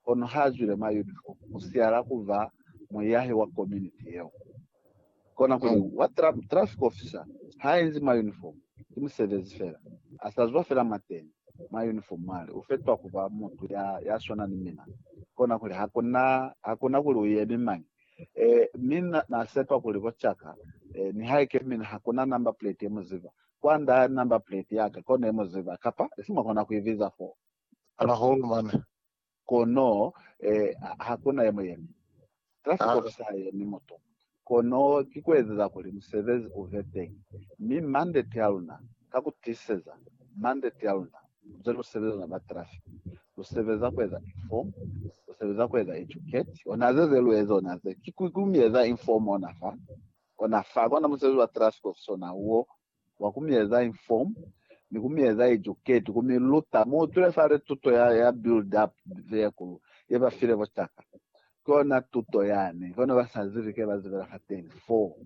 kono ha zwile mwa uniform ku siala ku ba muyahi wa community yeo. Kona kuli wa traffic officer ha enzi mwa uniform ki musebezi fela, a sa zwa fela mwateñi mwa uniform mwali, u fetwa ku ba mutu ya ya swana ni mina. Kona kuli ha ku na ha ku na kuli u yemi mañi. Eh, mi na, na sepa kuli bo caka, eh, nihaike mina ha ku na number plate ye mu ziba, kwand'a number plate ya ka kono ye mu ziba, kapa isi mwa kona ku i biza foo. Ala hulu mane. Kono eh, hakuna ye muyemi. Trafiko ki sa yemi mutu. Kono ki kuezeza kuli musebezi ube teñi. Mi mandate aluna, ka kutiseza, mandate aluna, ze lusebeza luna ba trafiko, lusebeza kueza inform, lusebeza kueza educate, ona ze ze lueza ona ze, ki ku mieza inform ona fa, ona fa, kono musebezi wa trafiko sona uo, wa ku mi eza inform ni ku mi eza educate, ku mi luta mo utwile fale tuto ya, ya build up vehicle ye ba file bo caka. Ki ona tuto yani, kono ba sa zibi ke ba zibela fateni fo.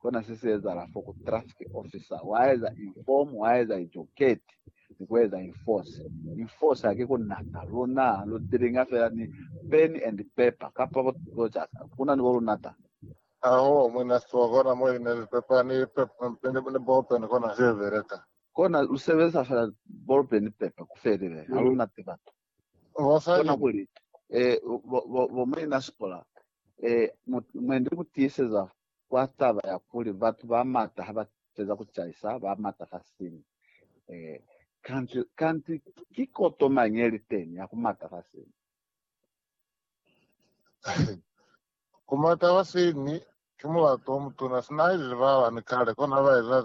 Kona se si ezahala fo ku traffic officer, wa eza inform, wa eza educate ni ku eza enforce. Enforce ha ki ku nata, luna lu dealinga fela ni pen and paper kapa bo, bo caka, kuna ni bo lunata. Hahoo mwe na siwa kona mo ine lipepa ni paper ni ballpen kona ze beleka. Kona lu sebelisa fela ballpen ni paper ku felelela. Ha lu na tiba tu. Mosali. Kona kuli, Eh, bo, bo, bo Muina Sipora, eh, mu, mwe ndi ku tiiseza kwa taba ya kuli batu ba mata ha ba feza ku caisa, ba mata fa siñwi. Eh, kanti, kanti ki koto mañi ye li teñi ya ku mata fa siñwi? Ku mata ba siñwi ki mulato o mutuna sina ha ilile ba bani kale kona ba eza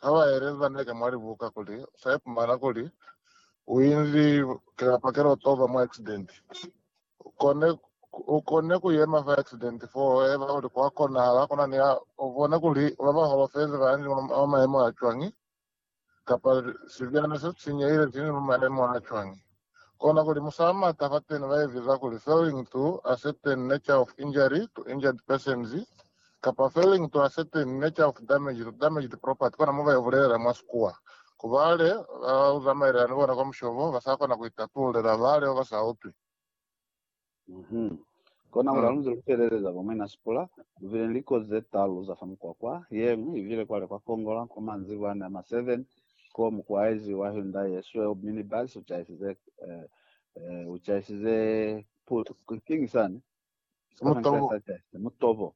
ha ba eleza neke mwa libuka kuli usa ipumana kuli u inzi kilapa ke lotoba mwa accident. U kone u kone ku yema fa accident fo eba kuli kwa konahala kuna ni ha u bone kuli ba ba holofezi ba inzi mwa maemo a cwañi. kapa sibyana se sinyehile sini mwa maemo a cwañi? Kona kuli musamata fateni ba eziza kuli failing to a certain nature of injury to injured persons kapa failing to a certain nature of damage to damaged property, kona mo ba yo bulelela mwa sikuwa ku bale ba uzamaelela ni bona kwa mushobo, ba sa kona ku itatulela bale ba ba sa utwi. Mhm. Kona kuli Ah. halunze lufeleleza kwa Mwina Sipula, lubile ni likozi zetalu za fa mukwakwa, yeñwi ibile kwale kwa Kongola kwa manzibwa ane a ma 7, ko mukwaezi wa Hyundai yesweu minibus uchaisize eh, eh, uchaisize pu- kiñi sani? Sipana Mutobo. ncaisa chaisa. Mutobo.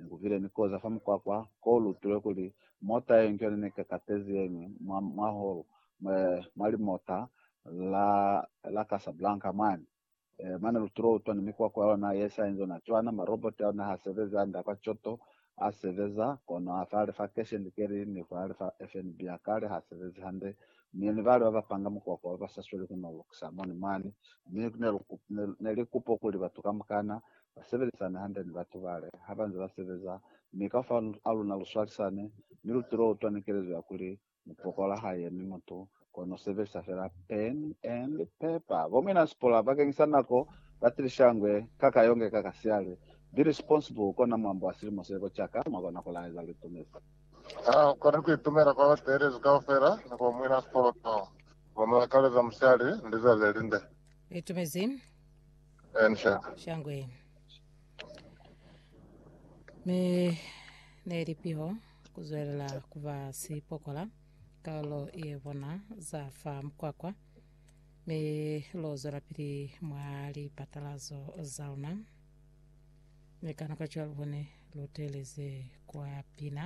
Ni kubile ni koza fa mukwakwa ko lutile kuli mota ye njo ne ka katezi yeñwi mwa, mwa holu, mwa, mwa limota la, la Casablanca mwani. E, mane lutile utwa ni mikwakwa ya ona ye sa inzona cwana, ma robot a ona ha sebezi, anda kwa coto a sebeza, kono a fale fa cash and carry ni fale fa FNB a kale ha sebezi hande. Mi ni bale ba ba panga mukwakwa ba ba sa sweli ku no lukisa moni mwani. Mi ne, ne, ne li kupo kuli batu kamukana ba sebelisane hande ni batu bale ha ba nze ba sebeza, mi kaufela a luna lu swalisane, mi lu tilo utwa ni kelezo ya kuli mu pokola ha yemi mutu, kono sebelisa fela pen and paper. Bo muinasikola bakeñisa nako ba tilisha ngwe ka ka yonge ka ka siali. Be responsible kona mwambo wa silimo se ko caka mwa kona ku laeza luitumezi. Ha u koni ku itumela kwa ba teelezi kaufela ni kwa muinasikola, kono mu lakaleza musiali ni lizazi le linde. Litumezi. Enhla. Shangwe. Me ne li piho kuzwelela kuba sipokola kaulo ye bona za fa mkwakwa me lo zwela pili mwa lipatalazo za luna me kana kwa cwalo bone luteleze kwa pina